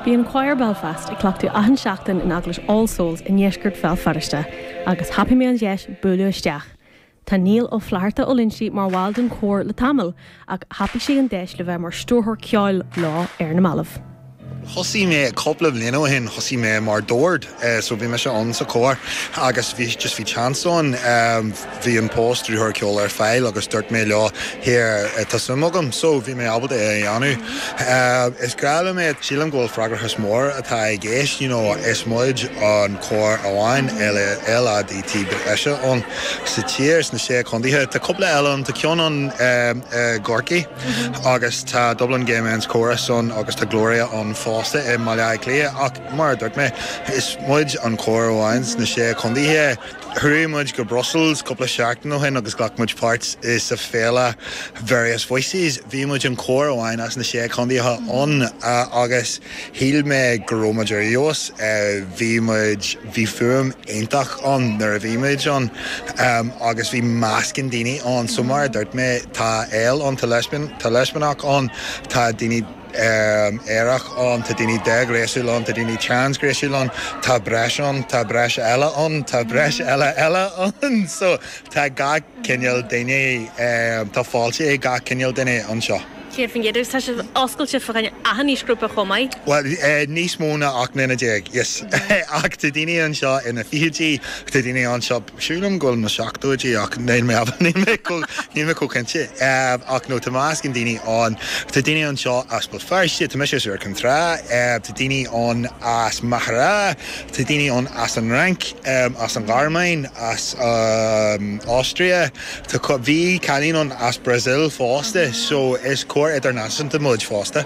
Bíonn Quire Belfast ag cleachtadh achan seachtain in Eaglais All Souls i ndeisceart Bhéal Feirste agus thapaigh mé an deis bualadh isteach. Tá Niall Ó Flatharta Ó Loinsigh mar bhall den chór le tamall ach thapaigh sé an deis le bheith mar stiúrthóir ceoil leo ar na mallaibh. Thosaigh mé cúpla bliain ó shin, thosaigh mé mar dord, so bhí mise ann sa chór agus bhí, just bhí chance ann. bhí an post stiúrthóir ceoil ar fáil agus dúirt mé leo, here, tá suim agam. So, bhí mé ábalta é a dhéanamh. Is grá liom é. Sílim go bhfuil freagrachas mór atá i gceist, you know, is muid an cór amháin LADT breise ann sa tír, sna sé contaetha. Tá cúpla eile ann, tá ceann ann i gCorcaigh agus tá Dublin Gay Men's Chorus ann agus tá Glória ann fosta i mBaile Átha Cliath ach mar a dúirt mé, is muid an cór amháin sna sé contaetha. Chuaigh muid go Brussels cúpla seachtain ó shin agus ghlac muid páirt insa fhéile Various Voices. Bhí muid an cór amháin as na sé contaetha ann agus shíl mé go raibh muid ar fheabhas. Bhí muid, bhí fuaim iontach ann nuair a bhí muid ann agus bhí meascán daoine ann, so mar a dúirt mé, tá L ann, tá leispeánach ann, tá daoine, aerach ann, tá daoine déghnéasúil ann, tá daoine transghnéasúil ann, tá breis ann, tá breis eile ann, tá breis eile eile ann so tá gach cineál duine, tá fáilte ag gach cineál duine anseo. 100 faoin gcéad, agus tá sibh oscailte do dhuine achan aoisghrúpa chomh maith? Bhuel, níos mó ná ocht mbliana déag, yes, ach tá daoine anseo ina bhfichidí, tá daoine anseo Sílim go bhfuil na seachtóidí ach níl mé chomh cinnte. Ach no, tá meascán daoine ann. Tá daoine anseo as Béal Feirste, tá mise as Iúr Cinn Trá, tá daoine ann as Machaire, tá daoine ann as an Fhrainc, as an Ghearmáin, as an Austria, tá cuma, bhí cailín ann as Brazil fosta, so is cór idirnáisiúnta muid fosta.